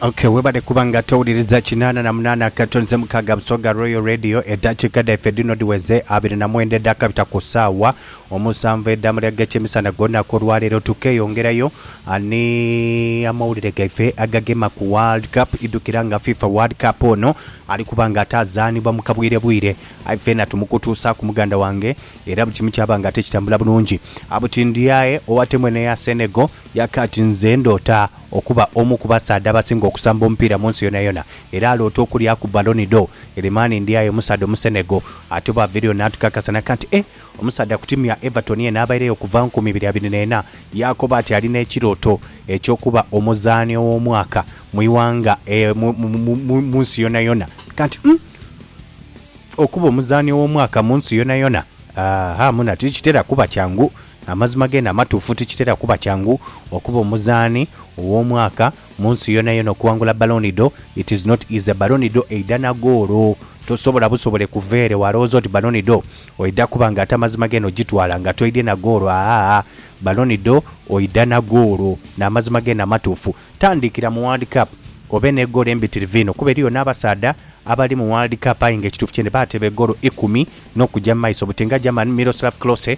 Ok, webale kuba nga towuliriza kinaana na munaana akato nze mukaaga Busoga Royal Radio. Eddakiika dhaife dhino dhiweze abiri na mwenda edhakabita ku saawa omusanvu edhamalya g'ekyemisana gw'olunaku olwaleero. Tukeyongerayo ah, ni amawulire gaife agagema ku World Cup. Idhukira nga FIFA World Cup ono ali kuba nga ataazaanibwa mu kabwirebwire, aye feena tumukutuusaaku muganda wange, era buli kimu kyaba nga ate kitambula bulungi. Ah, buti ndi aye owa tiimu eno eya Senegal Yaki ati, Nze ndoota okuba omu ku basaadha abasinga okusamba omupiira mu nsi yonayona. Era aloota okulyaku Ballon d'Or. Ere mani ndi aye omusaadha Omusenegal. Ate bw'aviireyo n'atukakasa naka nti, Eh, omusaadha ku tiimu ya Everton yenha abaireyo okuva mu nkumi ibiri abiri n'ena. Yaakoba ati alina ekirooto eky'okuba omuzaani ow'omwaka mu ighanga e, mu, mu, mu, mu nsi yonayona. Kati, umm, okuba omuzaani ow'omwaka mu nsi yonayona! Aaha, munho ati, Tikitera kuba kyangu. Amazima geene amatuufu, tikitera kuba kyangu okuba omuzaani ow'omwaka mu nsi yonayona okuwangula Ballon d'Or, it is not easy, Ballon d'Or eidha na goolo, tosobola busobole kuva ere walowooza oti Ballon d'Or oidha kuba nga ate amazima geene ogitwala nga toidhye na goolo, aah-aah, Ballon d'Or oidha na goolo n'amazima geene amatuufu. Tandiikira mu World Cup obe ne goolo embitirivu inho kuba eriyo n'abasaadha abali mu World Cup aye nga ekituufu kyene baateeba egoolo ikumi n'okugya mu maiso buti nga German Miroslav Klose,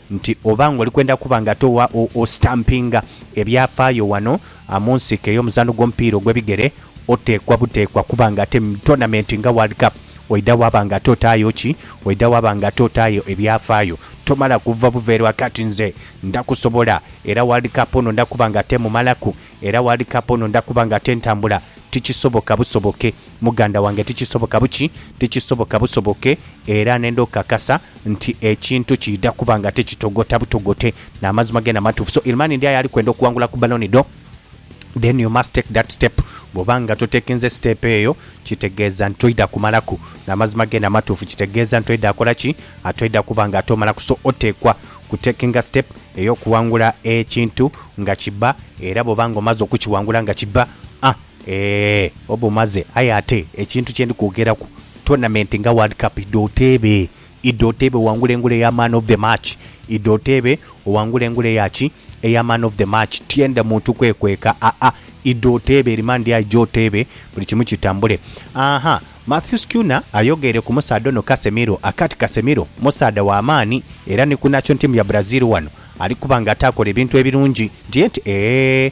nti oba ng'oli kwenda kuba nga ate owa ositampinga ebyafaayo wano mu nsiike ey'omuzaano gw'omupiira ogw'ebigere, oteekwa buteekwa kuba nga ate mu tonamenti nga World Cup oidha waaba nga ate otaayo ki? Oidha waaba nga ate otaayo ebyafaayo. Tomala kuva buveera wa kati nze nda kusobola era World Cup ono nda kuba nga ate mmumalaku era World Cup ono nda kuba nga ate ntambula, tikisoboka busoboke. Muganda wange tikisoboka buki, tikisoboka busoboke, era nenda okukakasa nti ekintu kiidha kuba nga tikitogota butogote. Namazima gena matuufu. So Ilmani ndi aye ali kwenda okuwangula ku baloni dho. Then you must take that step. Bwoba nga totekinze siteepu eyo, kitegeeza nti toidha kumalaku. Namazima gena matuufu. Kitegeeza nti toidha kola ki? Toidha kuba nga ate omalaku. So oteekwa kutekinga siteepu eyokuwangula ekintu nga kibba, era bwoba nga omaze okukiwangula nga kibba, a. Eeh oba omaze aye ate ekintu kyendi kwogeraku tournament nga world cup idha oteebe idha oteebe owangule engule eya man of the match idha oteebe owangule engule eya ki eya man of the match tyenda muntu kwekweka aa idha oteebe remand aije oteebe buli kimu kitambule aaha Mathews Cuna ayogeere ku musaadha ono Casemiro akati Casemiro musaadha wa maani era ni ku national team ya Brazil wano ali kuba nga atakola ebintu ebirungi nti enti eeh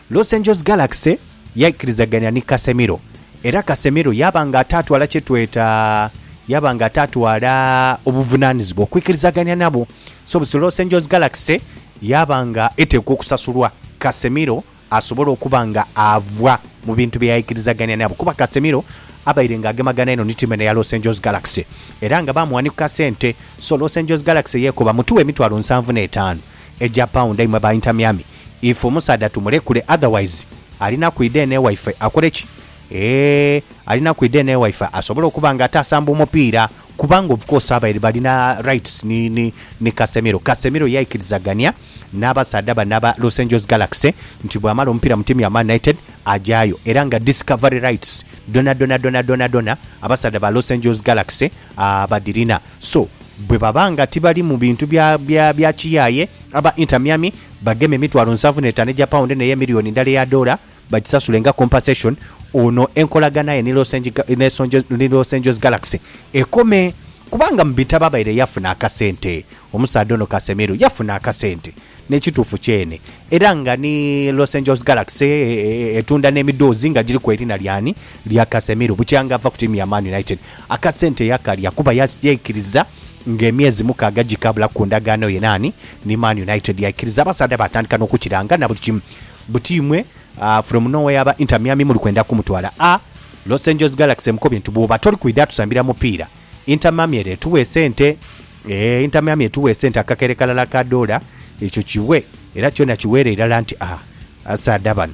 Los Angeles Galaxy yaikirizagania ni Casemiro era Casemiro yaaba nga ataatwala kye tweta, yaaba nga ataatwala obuvunaanizibwa okwikirizagania nabo. So busi Los Angeles Galaxy yaaba nga eteekwa okusasulwa Casemiro asobole okuba nga ava mu bintu bye yaikirizagania nabo kuba Casemiro abaire nga agemagana inho ni tiimu eno eya Los Angeles Galaxy era nga baamuwanikuka sente. So Los Angeles Galaxy yeekoba mutuwe emitwalo nsanvu n'etaanu egya paunda imwe aba Inter Miami If omusaadha tumulekule otherwise alina kwidha eno ewaife akole ki? Eeh alina kwidha eno ewaife asobole okuba nga ate asamba omupiira kubanga of course abaire balina rights ni ni ni Casemiro. Casemiro yaikirizagania n'abasaadha bano aba Los Angeles Galaxy nti bw'amala omupiira mu tiimu ya Man United agyayo era nga discovery rights dhona dhona dhona dhona dhona abasaadha ba Los Angeles Galaxy abadhirina. So, bwe baba nga tibalimu bintu bya, bya, bya kiyaaye, aba Inter Miami bagema emitwalo nsanvu n'etaano egya pawundi n'eya emiliyoni ndala eya doola bagisasule nga compensation, ono enkolagana ye ni Los Ange, ni Los Angeles Galaxy ekome. Kubanga mu bitabo abaire yafuna akasente, omusaadha ono Casemiro yafuna akasente, n'ekituufu kyene, era nga ni Los Angeles Galaxy etunda n'emidhoozi nga giriku erina ly'ani? Lya Casemiro, bukyanga ava ku tiimu ya Man United. Akasente yakalya kuba yaikiriza ng'emyezi mukaaga gikaabula ku ndagaano ye naani? Ni Man United. Yaikiriza abasaadha baatandika n'okukiranga na buli kimu. Buti imwe from nowhere aba Inter Miami muli kwenda kumutwala a Los Angeles Galaxy emukobye nti bwooba toli kwidha tusambira mupiira Inter Miami ere etuwa esente. Eeh Inter Miami etuwa esente akakere kalala ka doola ekyo kiwe era kyona kiweere irala nti a asaadha bano.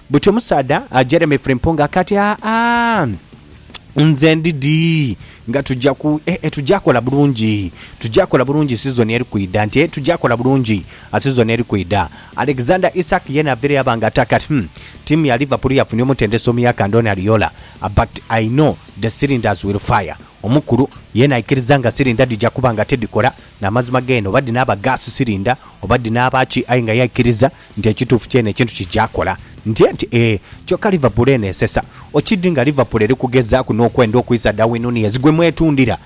Buti omusaadha Jeremy Frimpong kati aa nze ndi dii nga tugya ku eh, eh, tugya kola bulungi tugya kola bulungi sizoni eri kwidha nti eh, tugya kola bulungi ah, sizoni eri kwidha Alexander Isak yena avire yaba nga ata kati hmm, tiimu ya Liverpool yafunye omutendesi omuya ka Andoni Ariola ah, but I know the cylinders will fire omukulu yena aikiriza nga silinda dhigya kuba nga tidhikola N'amazima geene, oba dhi naaba ga sisirinda, oba dhi naaba ki, aye nga yaikiriza nti ekituufu kyeene ekintu kija kola. Ntye nti, Ee. Kyoka Liverpool eneesesa. Okidhi nga Liverpool eri kugezaaku n'okwenda okwisa Darwin Nunez gwe mwetundira?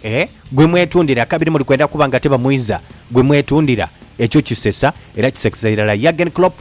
Ee, gwe mwetundira. Kabiri muli kwenda kuba nga tibamwiza. Gwe mwetundira. Ekyo kisesa, era kisekesa irala. Jurgen Klopp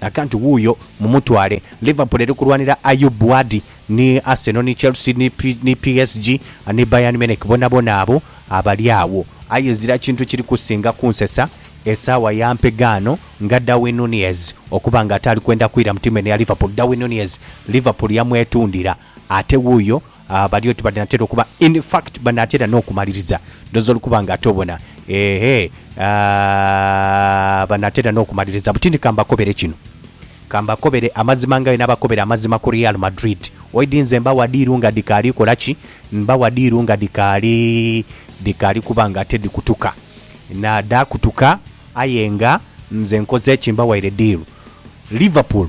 Akantu wuuyo, mumutwale. Liverpool eri kulwanira Ayoub Bouadi, ni Arsenal, ni Chelsea, ni PSG, ni Bayern Munich, bonabona abo abali agho. Aye ezira kintu kiri kusinga kunsesa esaawa ya mpegaano nga Darwin Nunez okuba nga ate ali kwenda kwira mu tiimu eno eya Liverpool. Darwin Nunez, Liverpool yamwetundira. Ate wuuyo bali oti banaatera okuba, in fact banaatera n'okumaliriza. Ndhoozi oli kuba nga ate obona. Eehee, aah, banaatera n'okumaliriza. Butindi ka mbakobere kino. Ka mbakobere amazima nga bwenabakobera amazima ku Real Madrid. Oidhi nze mbawa diiru nga dhikaali kola ki? Mbawa diiru nga dhikaali, dhikaali kuba nga ate dhikutuka. Naa, dhaakutuka aye nga nze nkoze ki? Mbawaire diiru. Liverpool.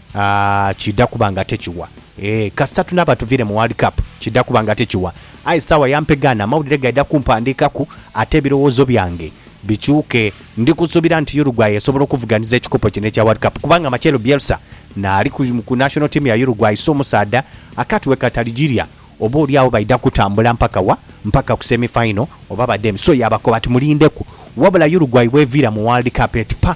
Aah kidha kuba nga tekiwa. Eeh kasita tunaaba tuviire mu World Cup kidha kuba nga tekiwa. Aye saawa ya mpegaano amawulire gaidha kumpandiikaku ate ebirowoozo byange bikyuke. Ndi kusuubira nti Uruguay esobola okuvuganhiza ekikopo kino ekya World Cup kubanga Marcelo Bielsa naali ku national team ya Uruguay si omusaadha akatwe katarigirya. Oba oli agho baidha kutambula mpaka wa? Mpaka ku semi final oba badheemi? So yaabakoba ati mulindeku. Wabula Uruguay bweviira mu World Cup eti pa!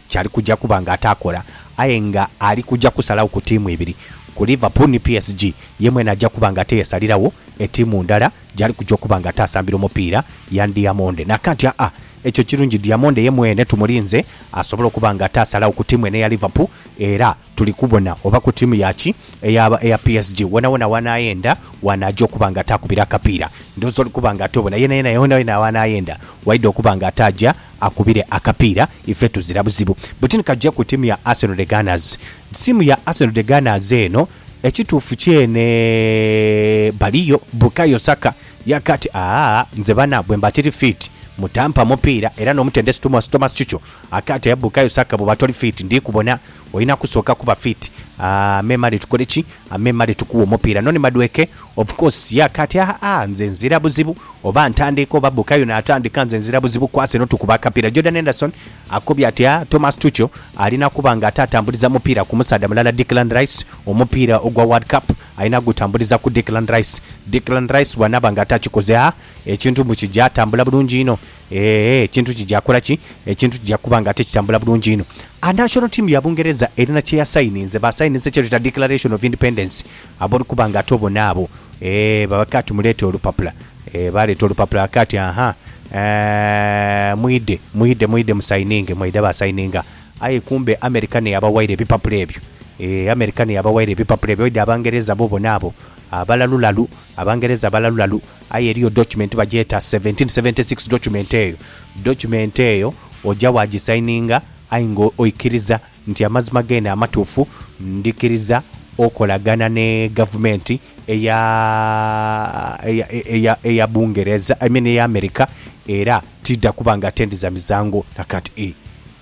kyali kuja kuba nga ataakola aye nga ali kuja kusalagho ku tiimu ibiri, ku Liverpool ni PSG, ye mwene aja kuba nga atiyesaliragho etiimu ndala gyali kuja okuba nga ataasambira omupiira ya Ndiamonde. Naaka nti, Aa, ekyo kirungi, Diamonde ye mwene tumulinze asobole okuba nga ataasalagho ku tiimu eno eya Liverpool era. Tuli kubona oba ku tiimu ya ki eyaaba eya PSG, wonawona w'anaayenda w'anaaja okuba nga ataakubira akapiira, ndhooza oli kuba nga atobona yenayena yonayona w'anaayenda waidha okuba nga ataaja akubire akapiira, ife tuzira buzibu. Bwetyo ni kaja ku tiimu ya Arsenal The Gunners. Tiimu ya Arsenal The Gunners eno ekituufu kyene baliyo, Bukayo Saka yaaka ati, Aa, nze bana bwemba tiri fiiti mutampa mupiira era n'omutendesi Thomas Tuchel akaati, Aye Bukayo Saka bw'oba toli fiiti ndhi kubona. Olina kusooka kuba fit. Aah me Male tukole ki? Aah me Male tukuwe omupiira noni Madueke? Of course yeah kati aah nze nzira buzibu oba ntandiika oba Bukayo natandika nze nzira buzibu kwasa eno tukube akapiira Jordan Henderson akobye ati aah Thomas Tuchel alina kuba nga ate atambuliza mupiira ku musaadha mulala Declan Rice omupiira ogwa World Cup alina gutambuliza ku Declan Rice Declan Rice bwanaaba nga atakikoze aah ekintu mbu kigya tambula bulungi inho Eeh, ekintu kija kola ki? Ekintu kija kuba nga tikitambula bulungi inho. A National ttiimu ya Bungereza erina kye yasayininze. Baasayininze kye tweta Declaration of Independence. Ab'oli kuba nga ate obona abo. Eeh, baba kaati muleete olupapula. Eeh, baaleeta olupapula kaati. Aha, eeh, mwidhe, mwidhe, mwidhe musayininge. Mwaidha baasayininga. Aye kumbe Amerika n'eyabawaire ebipapula ebyo. Eeh, Amerika n'eyabawaire ebipapula ebyo. Waidha Abangereza bo bona abo. Abalalulalu, Abangereza balalulalu. Aye eriyo document bagyeta 1776 document eyo document eyo oja wa gisaininga aye nga oikiriza nti amazima gene amatufu ndikiriza okolagana ne gavumenti eya eya eya eya bungereza I mean eya America era tida kuba nga ate ndiza mizango nakati e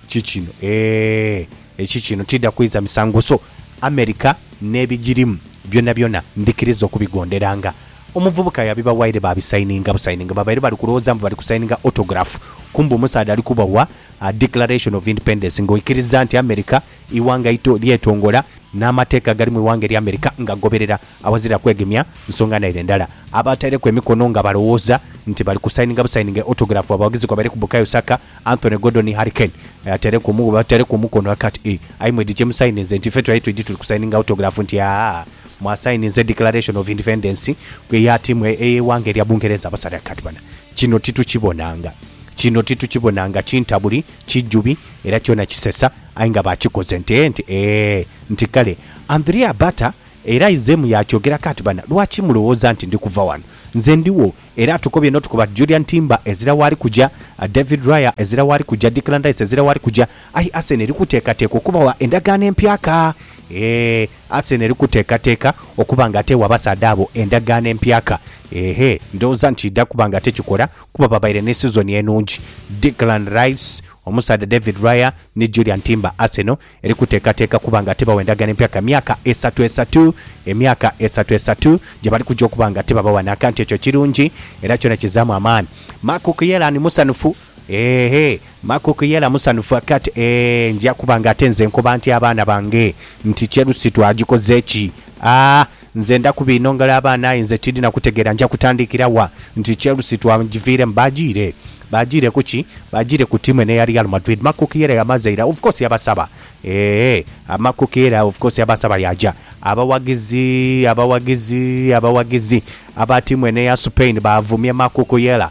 kikino eeh ekikino tida kwiza misango so America nebijirimu byonabyona ndikiriza okubigonderanga Omuvubuka yabibawaire baabisayininga busayininga. Babaire bali kulowooza mbu bali kusayininga autograph, kumbe omusaadha ali kubawa Declaration of Independence nga oikiriza nti America ighanga ito lyetongola n'amateeka agali mu ighanga erya America ngagoberera awazira kwegemya nsonga naire ndala. Abaataireku emikono nga balowooza nti bali kusayininga busayininga autograph abawagizi kwabaireku Bukayo Saka, Anthony Gordon ni Harry Kane. Ataireku omu, ataireku omukono aka ati, Ee, aye mwidhi kye musayininze nti ife twali twidhi tuli kusayininga autograph nti aa. Mwasayininze Declaration of Independence gwe yatiimwa ey'eighanga erya Bungereza abasaadha kati bana kino titukibonanga. Kino titukibonanga kintabuli, kijjubi era kyona kisesa aye nga bakikoze nti eeh nti eeh nti kale and three are butter era aizemu yakyogera kati bana lwaki mulowooza nti ndi kuva wano nze ndiwo era atukobye notukoba Julian Timber ezira waali kuja, David Raya ezira waali kuja, Declan Rice ezira waali kuja aye Arsenal eri kuteekateeka okubawa endagaano empyaka eeh. Arsenal eri kuteekateeka okuba nga ate ewa abasaadha abo endagaano empyaka? Eehhe, ndhowooza nti eidha kuba nga tekikola kuba babaire ni sizoni enungi. Declan Rice, omusaadha David Raya ni Julian Timber Arsenal eri kuteekateeka kuba nga ate bawa endagaano empyaka myaka esatu esatu, emyaka esatu esatu gye bali kuja okuba nga ate babawa n'akantu. Ekyo kirungi era kyona kizaamu amaani. Marc Cucurella ni musanhufu. Eeh Makuk yela musanhufu akati eeh nja kuba nga ate nze nkoba ntya abaana bange nti Chelsea twagikoze ki? Aah nze nda kubinongela abaana aye nze tindina kutegera nja kutandikira wa nti Chelsea twagiviremu bagiire Bagiire kuki? Bagiire ku tiimu eno eya Real Madrid Makuk yela yamaze ira of course yabasaba eeh Makuk yela of course yabasaba yaja Abawagizi abawagizi abawagizi aba tiimu eno eya Spain bavumye Makuk yela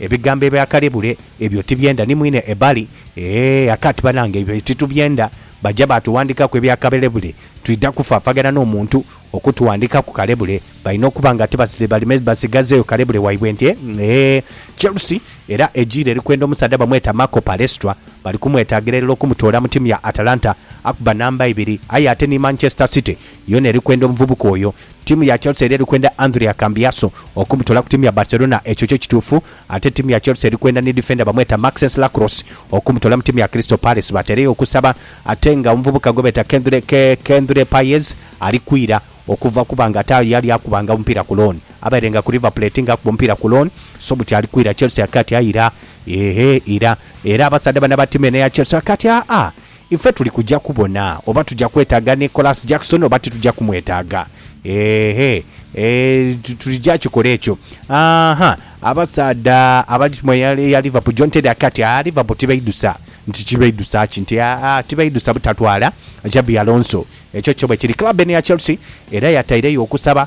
Ebigambo ebya kale bule ebyo tibyenda ni mwine ebali eeh akati banange ebyo titubyenda baja batuwandikaku ebya kabele bule twidha kufafagana no muntu okutuwandikaku kale bule balina okuba nga tibasile baleme basigazeyo kale bule waibwe nti eeh Chelsea era ejiile erikwenda omusadha bamweta Marco Palestra bali kumwetagira elala okumutoola mu timu ya Atalanta akuba namba ibiri aye ate ni Manchester City Yona eri kwenda omuvubuka oyo. Ttiimu ya Chelsea era eri kwenda Andrea Cambiasso okumutoola ku ttiimu ya Barcelona. Ekyo kyo kituufu. Ate ttiimu ya Chelsea eri kwenda ni difenda bamweta Maxence Lacroix okumutoola mu ttiimu ya Crystal Palace. Bateereyo okusaba ate nga omuvubuka gwe beeta Kendré Paez ali kwira okuva kuba nga ate aye yali akubanga omupiira ku loan. Abaire nga ku River Plate nga akuba omupiira ku loan so buti ali kwira Chelsea ake ati aira, eehh ira. Era abasaadha bano aba ttiimu eno eya Chelsea ake ati aa, Ife tuli kuja kubona oba tuja kwetaaga Nicholas Jackson oba tituja kumwetaaga. Eehhe. Eeh, tulija kikola ekyo. Aaha, abasaadha abali timu eya, eya Liverpool, John Terry akake ati, Aa, Liverpool tibaidhusa. Nti kibaidhusa ki? Nti, Aa, tibaidhusa butatwala Xabi Alonso. Ekyo kyo bwe kiri. Club eno eya Chelsea era yataireyo okusaba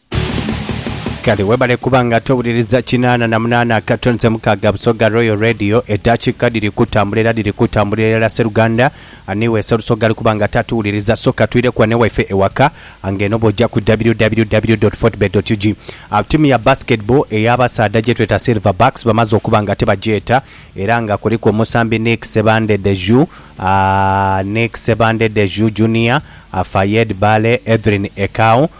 Kale webale kuba nga towuliriza kinaana na munaana akato nze mukaaga Busoga Royal Radio edakika dhiri kutambula era dhiri kutambulira irala seruganda ani we serusoga ali kuba nga tatuwuliriza soka twire ku ane waife ewaka nga eno bwoja ku www.fortebet.ug Awo tiimu ya basketball eya basaadha gyetweta silver backs bamaze okuba nga tibagyeta era nga kuliku omusambi Nick Sebande Deju ah, Nick Sebande Deju Junior ah, Fayed Bale Edrin Ekau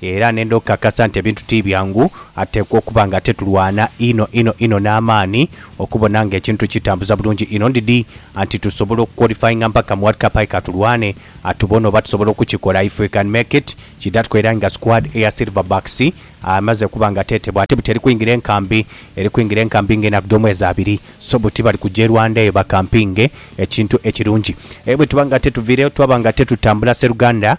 Era nenda okukakasa nti ebintu ti byangu, atekwa okuba nga ate tulwana inho inho inho n'amaani okubona nga ekintu tukitambuza bulungi inho ndidhi anti tusobola okuqualifyinga mpaka mu World Cup aye ka tulwane atubone oba tusobola okukikola if we can make it kidatko era nga squad eya Silver Bucks amaze okuba nga tetebwa ate buti eri kwingira enkambi eri kwingira enkambi nga enaku dh'omwezi abiri so buti bali kuja e Rwanda eyo bakampinge ekintu ekirungi aye bwetuba nga tetuviireyo twaba nga tetutambula Sseruganda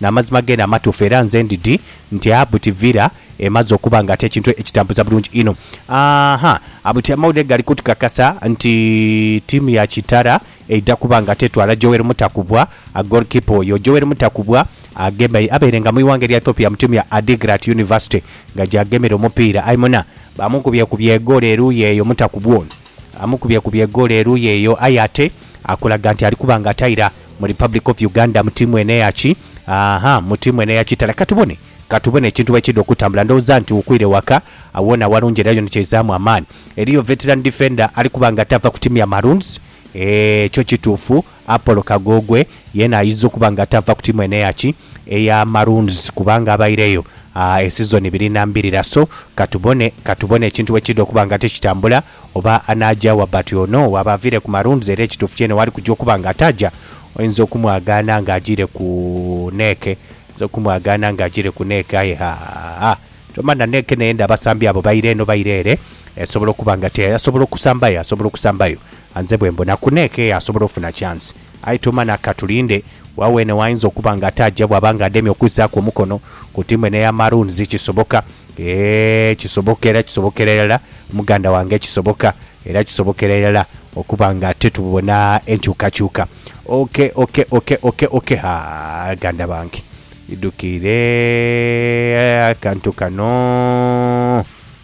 N'amazima geene amatuufu, era nze ndidhi nti Abuti Villa emaze okuba nga ati ekintu ekitambuza bulungi inho. Aa-ha, Abuti amawulire gali kutukakasa nti tiimu ya Kitara eidha kuba nga ati etwala Joel Mutakubwa, goalkeeper oyo. Joel Mutakubwa agemba abaire nga mu ighanga erya Ethiopia mu tiimu ya Adigrat University nga gy'agemera omupiira aye muna. Bamukubyekubye egoolo eruuyi eyo, Mutakubwa ono amukubyekubye egoolo eruuyi eyo aye ate akulaga nti ali kuba nga ati aira Mu Republic of Uganda mu tiimu eno eya ki? Aaha, mu tiimu eno eya kitala. Katubone, katubone ekintu bwe kiidha okutambula. Ndhowooza nti wukwire waka, agho woona walungi era yona kyaizaamu amaani. Eriyo veteran defender ali kuba nga tava ku tiimu ya Maroons? Eeh, kyo kituufu, Apollo Kagoogwe yeena aidha okuba nga tava ku tiimu eno eya ki? Eya Maroons kubanga abaireyo aa esizoni ibiri na mbirira. So, katubone, katubone ekintu bwe kiidha okuba nga tikitambula. Oba anaaja wa bati ono waaba aviire ku Maroons era ekituufu kyene waali kujja okuba nga ataaja, oinza okumwagaana nga ajiire ku neeke, oinza okumwagaana nga ajiire ku neeke aye haa, tomanha neeke n'eyenda abasambi abo baire eno baire ere, esobola okuba nga ti aye asobola okusambayo, asobola okusambayo. Nze bwe mbona ku neeke asobola ofuna chance. Aye Tomana, ka tulinde. Wa weene w'ayinza okuba nga ataaja bw'aba nga ademye okuzzaaku omukono ku ttiimu eno eya Maroons. Kisoboka. Eeh, kisoboka era kisobokera irala, muganda wange. Kisoboka era kisobokera irala okuba nga titubona enkyukakyuka. Ok, ok, ok, ok, ok. Ha, ganda bange. Idhukiire akantu kano.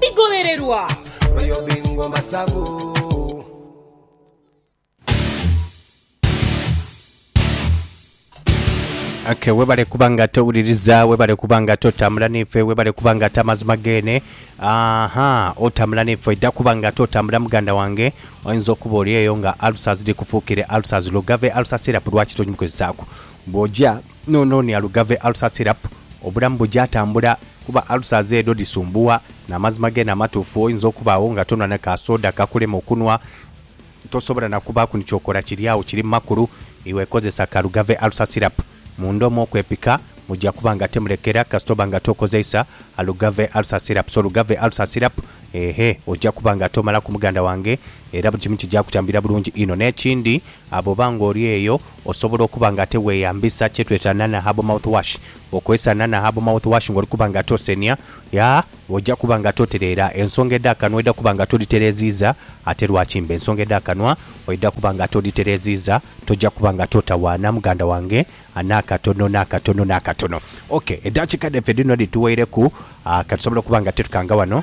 Bigholererwa. Oyo Bingo Masabu. Okay, webale kuba nga towuliriza webale kuba nga totambula naife webale kuba nga ate amazima gene aha otambula naife ojja kuba nga totambula muganda wange oyinza okuba oli eyo nga alusa ziri kufuukire alusa zilugave alusa sirapu lwaki togimukozesaaku bwojja Nono ni Alugave Ulcer Syrup, obulamu buja tambula kuba ulcers edho dhisumbuwa. Namazima gene amatuufu oyinza okubagho nga tonwa na ka soda kakulema okunwa, tosobola na kubaaku ni kyokola kiri agho kiri mu makulu, iwe kozesa ka Alugave Ulcer Syrup munda omwo okwepika muja kuba nga temulekera kasita oba nga tokozeisa Alugave Ulcer Syrup. So Lugave Ulcer Syrup eeh oja kuba nga tomalaku muganda wange era buli kimu kija kutambulira bulungi inho. Nekindi bwoba nga oli eyo Osobola okuba nga ate weeyambisa kye tweta Nana Herbal Mouthwash. Okozesa Nana Herbal Mouthwash ng'oli kuba nga ate osenia, ya, oja kuba nga ate otereera ensonga edh'akanwa oidha kuba nga ate odhitereeziiza. Ate lwaki mba ensonga edh'akanwa oidha kuba nga ate odhitereeziiza, toja kuba nga ate otawaana muganda wange n'akatono, n'akatono, n'akatono. Ok, edaakiika dhaife dhino dhituweireku, ah, ka tusobole okuba nga ate tukanga wano.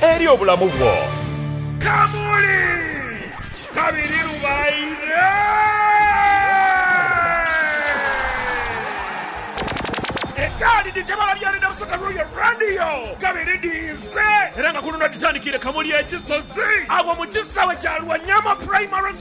Eri obulamu bwo. Kamuli kabiri lubaire. Etaali dhi tebala byali na busota lw'oyo Radio kabiri dhiize era nga ku luno dhitandikiire Kamuli ekisozi agho mu kisaawe kya Lwanyama Primary